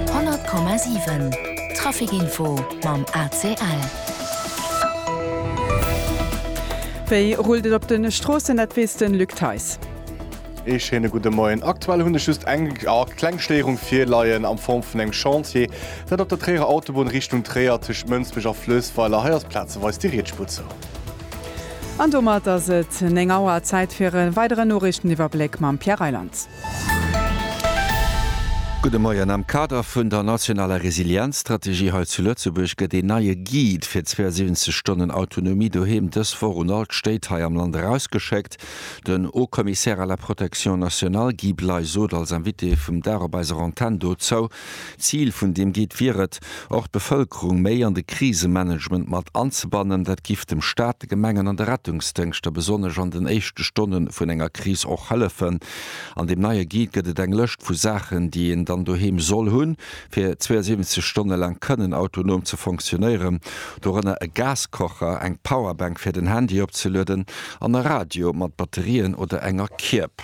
100,7 Trafic Info mam ACL. Wéi rullt et op de Stroossen, dat weess de Luc Theis. Ee schéine gudde Moien. Aktuell hunn ech just eng kleng Stéierung virleien am Form vun engem Chantier. Dat op der Tréierer Autobunn Richtung Tréier tëscht Mënsbech a Flößweiler. Hei ass plazeweis déi Riedspur zou. An domat ass et 9 Auer. Zäit fir e weideren Noriichteniwwerbléck mam Pierre Reyland. Gudde Moien. Am Kader vun der nationaler Resilienzstrategie hei zu Lëtzebuerg gëtt een neie Guide fir 72 Stonnen Autonomie doheem dës Woch un all d'Stéit hei am Land erausgeschéckt. Den Haut-Commissaire à la protection nationale Guy Bley sot als Invité vum Dag op eiser Antenn dozou. Zil vun deem Guide wier et, och d'Bevëlkerung méi an de Krisemanagement mat anzebannen. Dat giff dem Staat, de Gemengen an de Rettungsdéngschter, besonnesch an den éischte Stonne vun enger Kris, och hëllefen. An deem neie Guide gëtt et eng Lëscht vu Saachen, déi een dann doheem soll hunn, fir 72 Stonne laang kënnen autonom ze fonctionnéieren. Dorënner e Gaskocher, eng Powerbank fir den Handy opzelueden an e Radio mat Batterien oder enger Kierb.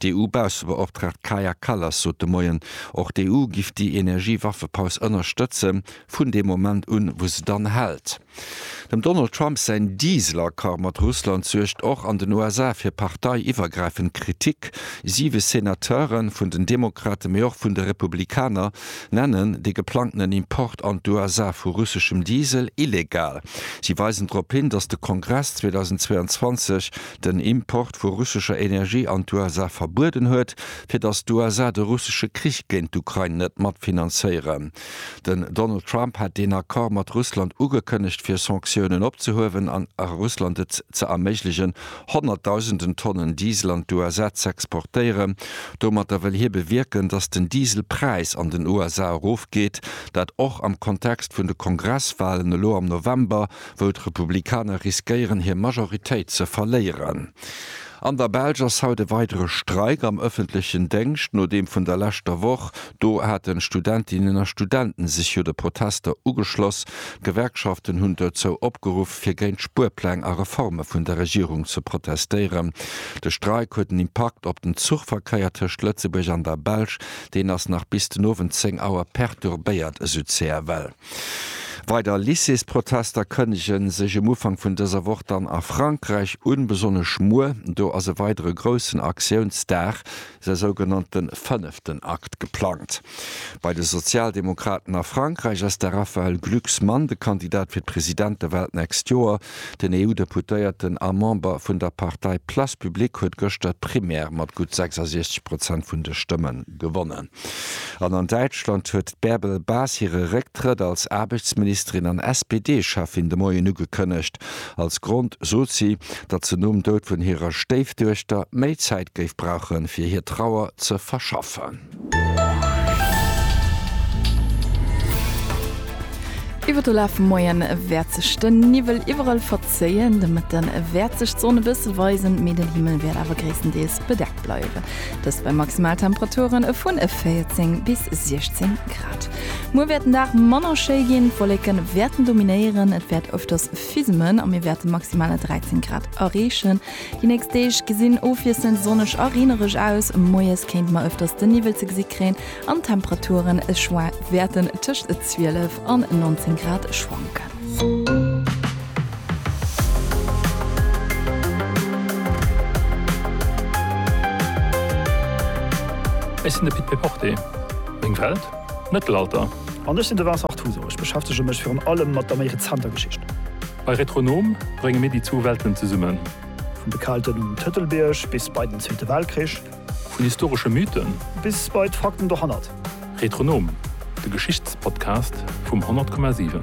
D'EU-Baussebeoptraagt Kaja Kallas sot de Moien, och d'EU giff déi Energie-Waffepaus ënnerstëtze vun deem Moment un, wou se dann hält. Dem Donald Trump säin Diesel-Accord mat Russland suergt och an den USA fir partei-iwwergräifend Kritik. Siwe Senateure vun den Demokrate mee och vun de Republikaner nennen de geplangtenen Import an d'USA vu russeschem Diesel illegal. Si weisen drop hin, datt de Kongress 2022 den Import vu russescher Energie an d'USA verbueden huet, fir datt d'USA de russesche Krich géint d'Ukrain net mat finanzéieren. Den Donald Trump hat deen Accord mat Russland ugekënnegt, fir Sanktiounen opzehuewen an Russland et ze erméiglechen, honnertdausenden Tonnen Diesel an d'USA z'exportéieren. Domatter wëll hie bewierken, datt den Dieselpräis an den USA erofgeet, dat och am Kontext vun de Kongresswalen elo am November, wou d'Republikaner riskéieren hir Majoritéit ze verléieren. An der Belsch ass haut e weidere Streik am ëffentlechen Déngscht no deem vun der leschter Woch. Do haten Studentinnen a Studenten sech jo de Protester ugeschloss. D'Gewerkschaften hunn dozou opgeruff fir géint Spuerpläng a Reforme vun der Regierung ze protestéieren. De Streik huet en Impakt op den Zuchverkéier tëscht Lëtzebuerg an der Belsch. Deen ass nach bis den Owend 10 Auer perturbéiert, esou CFL. Weider Lycéesprotester kënnege sech um Ufank vun dëser Woch dann a Frankräich un, besonnesch muer. Do ass e weidere groussen Aktiounsdag, säi sougenannte fënneften Akt, geplangt. Bei de Sozialdemokraten a Frankräich ass de Raphaël Glucksmann de Kandidat fir d'Presidentewal d'nächst Joer. Den EU-Deputéierten a Member vun der Partei Place Publique huet gëschter d'Primaire mat gutt 66 Prozent vun de Stëmme gewonnen. An an Däitschland huet d'Bärbel Bas hire Récktrëtt als Aarbechtsministerin an SPD-Cheffin de Moien ugekënnegt. Als Grond sot si, datt se nom Doud vun hirer Stéifduechter méi Zäit géif brauchen, fir hir Trauer ze verschaffen. Iwwer de Laf vum Moie wäert sech de Niwwel iwwerall verzéien. De Mëtte wäert sech d'Sonn e bësse weisen, mee den Himmel wäert awer gréisstendeels bedeckt. Nacht bleiwen. Dëst bei Maximaltemperaturen e vun e 14 bis 16 Grad. Muer wäert den Dag manner schéi ginn, d'Wolleken wäerten dominéieren, et wäert ëfters fismen a mir wäerte maximaler 13 Grad erreechen. Déi nächst Deeg gesinn ofwiesselnd sonneg a reenereg aus, moies kéinte mer ëfters de Niwwel ze gesi kréien an d'Temperaturen wäerten tëscht 12 an 19 Grad schwanken. Ech sinn de Pit Péporté. Meng Welt, d'Mëttelalter. An ech sinn de Vincent Artuso. Ech beschäftege mech virun allem mat der méi rezenter Geschicht. Bei Retronom brénge mir déi zwou Welten zesummen. Vun de Kelten um Tëtelbierg bis bei den Zweete Weltkrich. Vun historesche Mythen. Bis bei d'Fakten dohannert. Retronom, de Geschichtspodcast vum 100,7.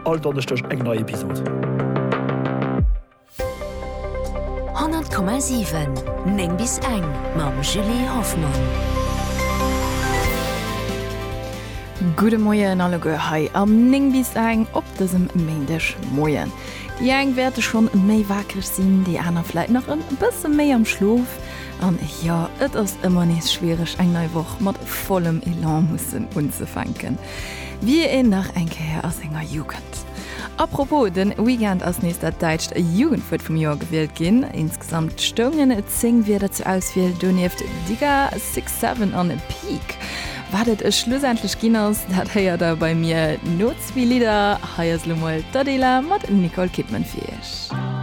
All Donneschdeg eng nei Episod. 100,7, 9 bis eng mam Julie Hoffmann. Gudde Moien alleguer hei am 9 bis eng op dësem Méindeg Moien. Déi eng wäerte schonn méi wakereg sinn, déi aner vläit nach e bësse méi am Schlof. An jo, et ass ëmmer nees schwiereg, eng nei Woch mat vollem Elan mussen unzefänken, wéi een nach eng Kéier a senger Jugend. Apropos, den Weekend ass nees dat däitscht Jugendwuert vum Joer gewielt ginn. Insgesamt stoungen 10 Wierder zur Auswiel, donieft Digga, Six Seven an Peak. Wat et schlussendlech ginn ass, dat héiert der bei mir no Zwee Lidder, hei ass elo mol d'Adela mat Nicole Kidman fir iech.